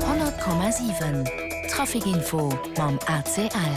100,7 Traficinfo mam ACL.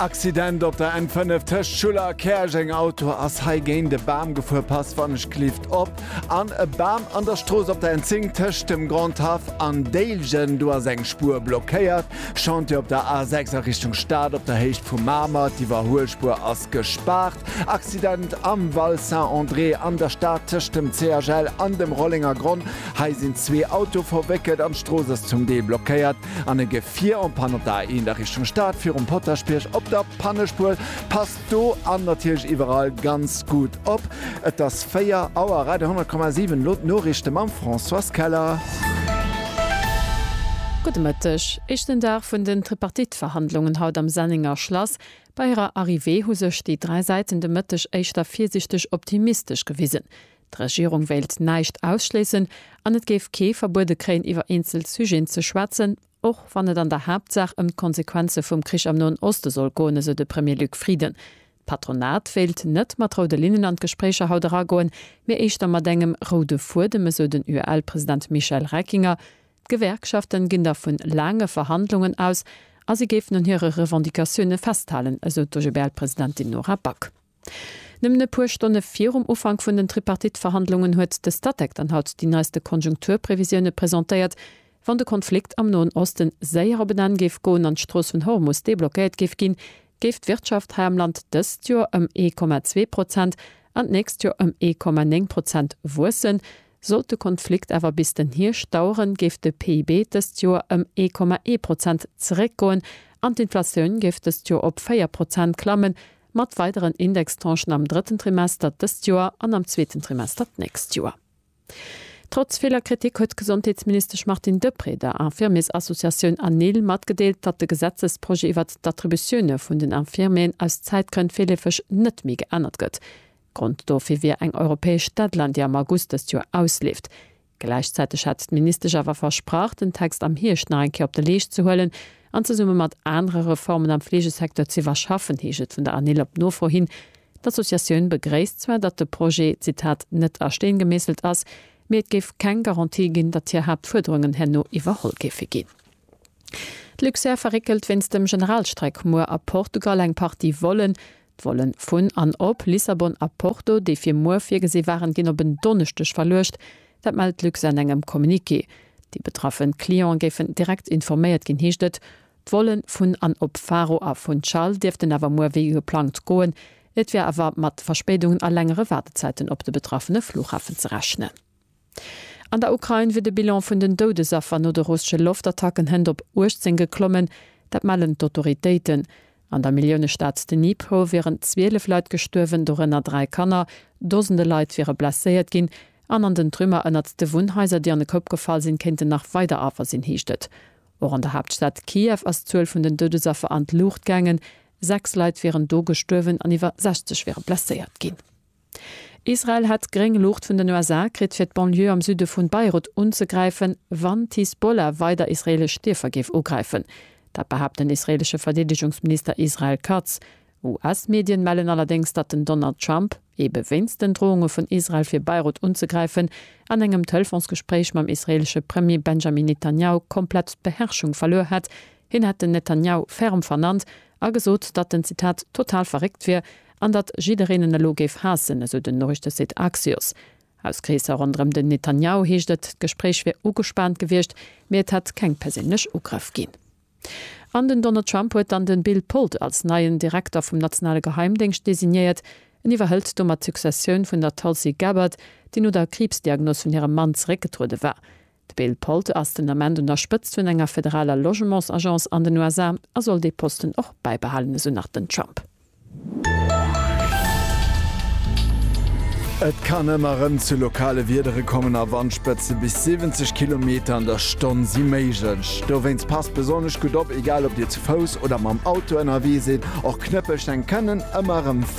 Accident op der N5 tëscht Schuller a Käerjeng, Auto ass hei géint e Bam gefuer, Passwanneschklift op an e Bam. An der Strooss op der N10 tëscht dem Grand Haff an Déiljen, do ass eng Spuer blockéiert. Chantier op der A6 a Richtung Stad op der Héicht vu Mamer, d'Iwwerhuelspuer ass. Gespaart, Accident am Val Saint-André an der Stad tëscht dem CHL an dem Rollenger Gronn. Hei sinn zwee Autoe verwéckelt an d'Strooss ass zum Deel blockéiert an e Gefier en Panne. Op der A1 a Richtung Stad virum Potaschbierg op der Pannespuer. Passt do an natierlech iwwerall ganz gutt op. Et ass 4 Auer, Radio 100,7, elo d'Noriichte mam Françoise Keller. Gudde Mëtteg. Éischten Dag vun den Tripartite-Verhandlungen haut am Sennenger Schlass. Bei hirer Arrivée hu sech déi dräi Säiten de Mëtteg éischter virsiichteg optimistesch gewisen. D'Regierung wéilt näischt ausschléissen an et géif kee verbuede kréien iwwer eenzel Sujeten ze schwätzen, och wann et an der Haaptsaach ëm d'Konsequenze vum Krich am Noen Oste soll goen, esou de Premier Luc Frieden. D'Patronat wéilt net mat roude Linnen an d'Gespréicher haut eragoen, mee éischter mat engem roude Fuedem, esou den UEL-President Michel Reckinger. D'Gewerkschaften ginn da vun laange Verhandlungen aus a si géifen un hire Revendicatioune festhalen, esou d'OGBL-Presidentin Nora Back. Nëmmen e puer Stonne virum Ufank vun den Tripartite-Verhandlungen huet de Statec dann haut déi neiste Konjunkturprevisioune presentéiert. Wann de Konflikt am Noen Oste séier op en Enn géif goen an d'Strooss vun Hormus deblockéiert géif ginn, géif d'Wirtschaft hei am Land dëst Joer ëm ee Komma zwee Prozent an d'nächst Joer ëm ee Komma néng Prozent wuessen, Sollt de Konflikt awer bis den Hierscht daueren, géif de PIB dëst Joer ëm ee Komma ee Prozent zeréckgoen an d'Inflatioun géif dëst Joer op véier Prozent klammen, mat weideren Indextranchen am drëtten Trimester dëst Joer an am zweeten Trimester d'nächst Joer. Trotz viller Kritik huet d'Gesondheetsministesch Martine Deprez der Infirmiersassociatioun ANIL matgedeelt, datt de Gesetzesprojet iwwert d'Attributioune vun den Infirmieren aus Zäitgrënn virleefeg net méi geännert gëtt. Grond dofir wier eng europäesch Deadline, déi am August dëst Joer ausleeft. Gläichzäiteg hat d'Ministesch awer versprach, den Text am Hierscht nach eng Kéier op de Leescht ze huelen an zesumme mat anere Reformen am Fleegesecteur ze iwwerschaffen, heescht et vun der ANIL op Nofro hin. D'Associatioun begréisst zwar, datt de Projet, Zitat, net a Steen gemeesselt ass, mee et géif keng Garantie ginn, datt hir Haaptfuerderungen herno iwwerholl géife ginn. D'Luxair verréckelt wéinst dem Generalstreik muer a Portugal eng Partie Vollen. D'Vollen vun an op Lissabon a Porto, déi fir muer virgesi waren, ginn op en Donneschdeg verluecht. Dat mellt Luxair an engem Communiqué. Déi betraffe Clientë géifen direkt informéiert ginn, heescht et. D'Volle vun an op Faro a Funchal dierften awer muer wéi geplangt goen. Et wier awer mat Verspéidungen a längere Waardezäiten op de betraffene Flughafen ze rechnen. An der Ukrain wier de Bilan vun den Doudesaffer no de russesche Loftattacken hënt op 18 geklommen. Dat mellen d'Autoritéiten. An der Milliounestad Dnipro wieren 12 Leit gestuerwen, dorënner dräi Kanner. Dosende Leit wiere blesséiert ginn. An an den Trümmer ënnert de Wunnhaiser, déi an e Koup gefall sinn, kéinten nach weider Affer sinn, heescht et. Och an der Haaptstad Kiew ass d'Zuel vun den Doudesaffer an d'Luucht gaangen. Sechs Leit wieren do gestuerwen an iwwer 60 wiere blesséiert ginn. Israel hätt gréng Luucht vun den USA kritt, fir d'Banlieue am Süde vu Beirut unzegräifen, wann d'Hisbollah weider israeelesch Dierfer géif ugräifen. Dat behaapt den israeelesche Verdeedegungsminister Israel Katz. US-Medien mellen allerdéngs, datt den Donald Trump, ebe wéinst den Drounge vun Israel fir Beirut unzegräifen, an engem Telefonsgespréich mam israeelesche Premier Benjamin Netanjahu komplett d'Beherrschung verluer hätt. Hien hätt den Netanjahu ferm vernannt a gesot, datt en, Zitat, total verréckt wier An datt jiddereen en elo géif haassen, esou den Noriichtesite Axios. Aus Kreesser ronderëm den Netanjahu heescht et, d'Gespréich wier ugespaant gewiescht, mee et hätt keng perséinlech Ugrëff ginn. An den Donald Trump huet dann de Bill Pulte als neien Direkter vum nationale Geheimdéngscht designéiert. En iwwerhëlt domat d'Successioun vun der Tulsi Gabbard, déi no der Kriibsdiagnos vun hirem Mann zeréckgetruede war. De Bill Polte ass den Ament un der Spëtzt vun enger federaler Logementsagence an den USA a soll dee Posten och bäibehalen, esou nach den Trump. Et kann ëmmer rëm zu lokale Wiedere kommen a Wandspëtze bis 70 Kilometer an der Stonn si méiglech. Dowéinst passt besonnesch gutt op, egal ob Dir zu Fouss oder mam Auto ënnerwee sidd. Och Knëppelsteng kënnen ëmmer rëm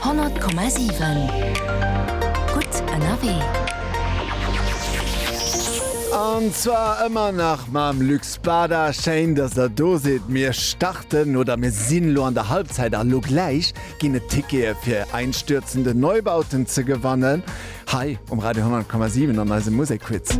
100,7 Gutt ënnerwee. An zwar ëmmer nach mam Luc Spada. Schéin, dass der do sidd. Mir starten, oder mir sinn elo an der Halbzeit, a lo gläich ginn et Tickete fir einstürzende Neubauten ze gewannen hei um Radio 100,7 an eisem Musekquiz.